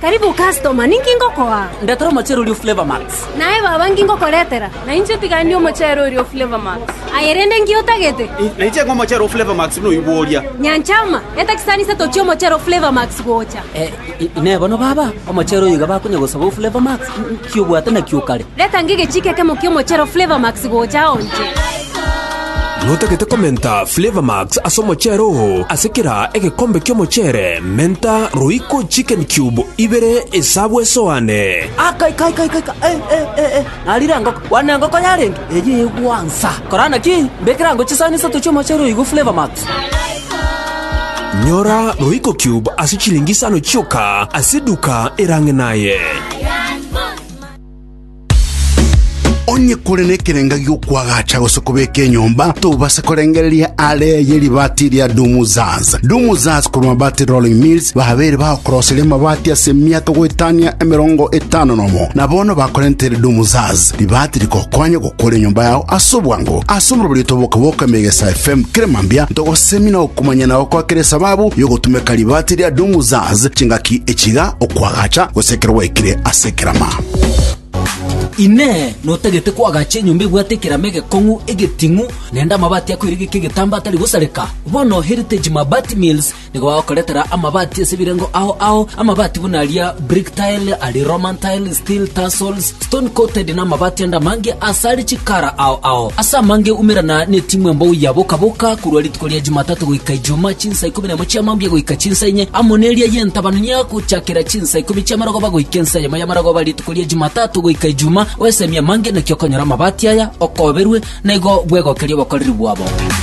Karibu customer, ninki ngokoa? Ndetera omochere oria o Flavour Max. Naye baba, nki ngokoretera? Nainche tiga ndie omochere oria o Flavour Max. Aye rende nki otagete? Nainche ng'a omochere o Flavour Max buna oyio bworia. Nyanchama, eta chisanisa tochie omochere o Flavour Max gocha. Inee bono baba, omochere oyo iga bakonya gosaba o Flavour Max? Ki obwate nakio o kare? Reta ngige chike ekemo ki'omochero Flavour Max gocha ao nche. Notagete komenta Flavour Max ase omochero oo ase kera egekombe ki'omochere menta Royco chicken cube ibere esabu esoane. Aka ika ika ika ika eh eh eh eh narire engoko kwana engoko yarenge eyio egwansa korana ki mbekere ango chisani isato chi'omochero oyo igwe Flavour Max. Nyora Royco Cube ase chilingi isano chioka ase eduka erang'e naye. onye kore nekerenga giokwagacha gose kobeka enyomba tobase korengereria are yeribati ria dumuzaz dumuzaz korwa mabati rolling mills babere bakoroseria mabati ase miato goetania emerongo etano nomo na bono bakorentere dumuzaz ribati rikokonya Kore enyomba yao ase obwango ase omorobori otoboka bwoka Megesa FM kera mambia ntogosemina okomanya na gokoa kera esababu yogotumeka ribaati ria Domu Zaz chingaki echiga okwagacha gose ekero gwaikire ase ekerama. Inee! Notagete kwagacha enyomba ebwate ekerama egekong'u, egeting'u, naende amabaati akoirigeka egetambaa atari gosareka? Bono Heritage Mabati Mills Nigo bagokoretera amabati ase ebirengo ao ao, amabati buna aria brick tile, aria Roman tile, steel tassels, stone coated, na amabati ande amange ase are chikara ao ao. Ase amange umerana netimwa embou ya boka boka korwa rituko ria Jumatatu goika Ijumaa chinsa ikomi na imo chia mambia goika chinsa inye, amo neria y'entabanu ya gochakera chinsa ikomi chia marogoba goika ensa eyemo ya marogoba rituko ria Jumatatu goika Ijumaa. Oesemie amange naki okonyora amabati aya, okoberwe, na igo bwegokerie obokoreri bwabo.